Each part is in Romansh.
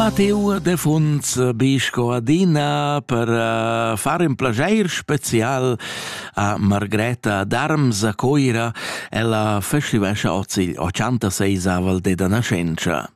Matteo Defunz be sco adina per uh, far in plageir special a Margreta Darms a Coira. Ella festivescha oz il 86aval deda nascenza.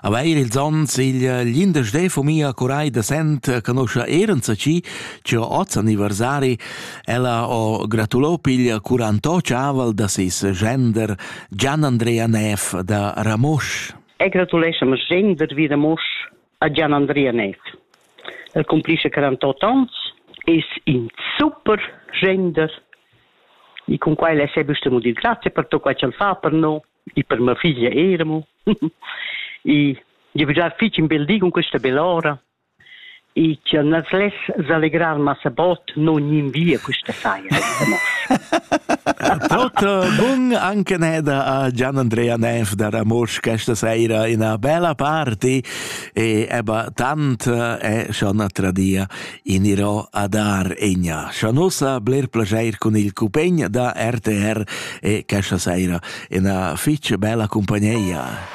Aveir ils onns il l'indes de fumia curai de Sent conoscia Ehrenza ci, ci ho oz anniversari, ella ho gratulo piglia 48 aval da sis gender Gian Andrea Neff da Ramosch. e gratuleschem Jen vid vida mosch a Gian Andrea Neff. El cumplisce 48 ans, es in super gender e con quai le sei bestemo di grazie per tutto quai che fa per noi e per mia figlia Eremo. e gli bisogna fare un bel di con questa bell'ora I cha nu's less s'allegrar massa bod no gnanvia quista saira da noss. Potter bun anche neda a Gian Andrea Nenf da Ramosch questa saira ina bella party e eba tant è schon tradia in irò a dar egna. Schon ussa bler plageir con il cupegn da RTR e questa saira ina fitch bella compagneia.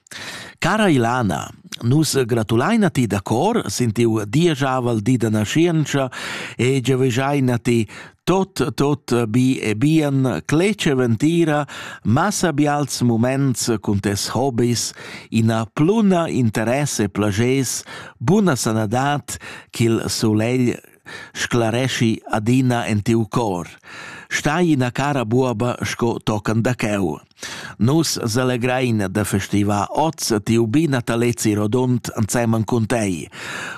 Cara Ilana, nus gratulain a ti da cor sin tiu dieschavel di da naschientscha e giavüschain a ti tot tot bi e bien cletg ventira, massa bials moments cun tes hobis, ina pluna interess e plages, buna sanadad ch'il sulegl sclareschi adina en tiu cor. Stai ina cara buoba sco tocan da cheu. Nus selegrein da festivar oz tiu bi natalezi rodund ensemen cun tei.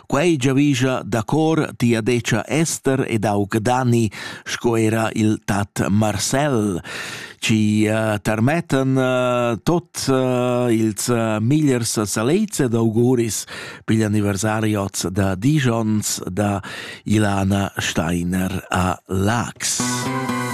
Quei giavischa da cor tia decia Ester ed aug Dani sco era il tat Marcel, ci uh, tarmettan uh, tot uh, ils uh, migliers salezia d'auguris pigl anniversari oz da disch onns da Ilana Steiner a Laax.